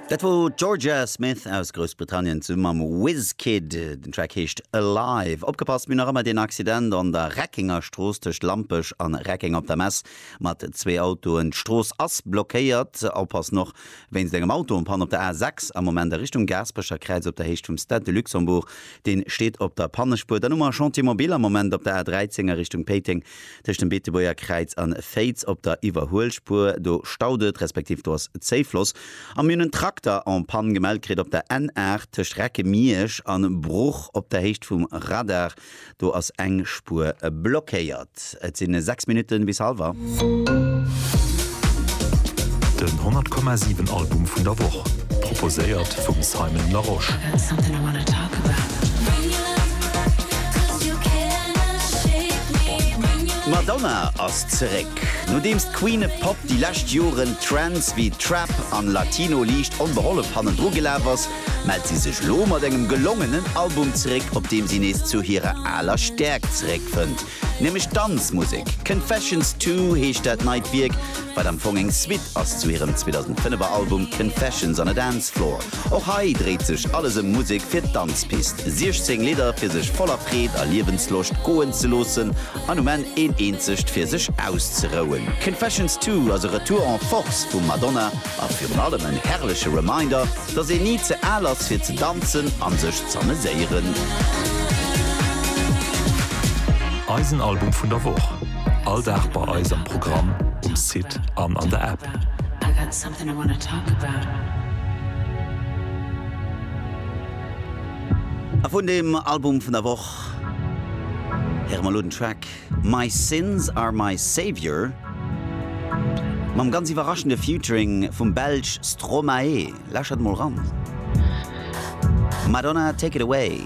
Dat wor d'Jorja Smith aus Groussbritannien zesumme mam Wizkid. Den Track heescht Alive. Opgepasst, mir hunn nach ëmmer deen Accident an der Reckenger Strooss tëscht Lampech an Reckeng op der Mess mat zwee Autoen. D'Strooss ass blockéiert. Oppassen och wéinst engem Auto an Panne op der A6 am Moment a Richtung Gaasperecher Kräiz op der Héicht vum Stade de Luxembourg. Dee steet op der Pannespuer. Dann hu mer e Chantier mobile am Moment op der A13 a Richtung Péiteng Tëscht dem Beetebuerger Kräiz an Féiz op der Iwwerhuelspuer, do staut et, respektiv do ass Zéifloss. A mir hunn en Trakter en panne gemellt kritt op der N 8 tëscht Recke-Miersch an Bruch op der Héicht vum Radar. Do ass eng Spuer blockéiert. Et si 6 Minutte bis hallwer. Den 100,7 Album vun der Woch, proposéiert vum Simon Larosche. D'Madonna ass zeréck. Nodeems d'Queen e Pop déi lescht Joren Trends wéi Trap an Latino liicht onbehollef hannendru gelaf ass, mellt si sech lo mat engem gelongenen Album zeréck, op deem si nees zu hirer aler Stäerkt zeréckfënnt, nämlech d'Danzmusek. Confessions Two heescht dat neit Wierk, wat am Fong eng Suite ass zu hirem 2005er Album Confessions on a Dance Floor. Och hei dréit sech alles ëm Musek fir d'Danzpist. 16 Lidder fir sech voller Freed a Liewensloscht goen ze loossen an um Enn een eenzegt fir sech auszerouen. Confessions Two ass e Retour en Force vum Madonna a virun allem en herrleche Reminder, dass een ni ze al ass fir ze danzen an sech z'ameséieren. Eisen Album vun der Woch, all Dag bei eis am Programm, um Site an an der App. And I wanna talk about it. A vun deem Album vun der Woch héiere mer elo den Track My Sins Are My Saviour mam ganz iwwerraschende Featuring vum Belsch Stromae. Lauschtert emol eran. Madonna, Take It Away.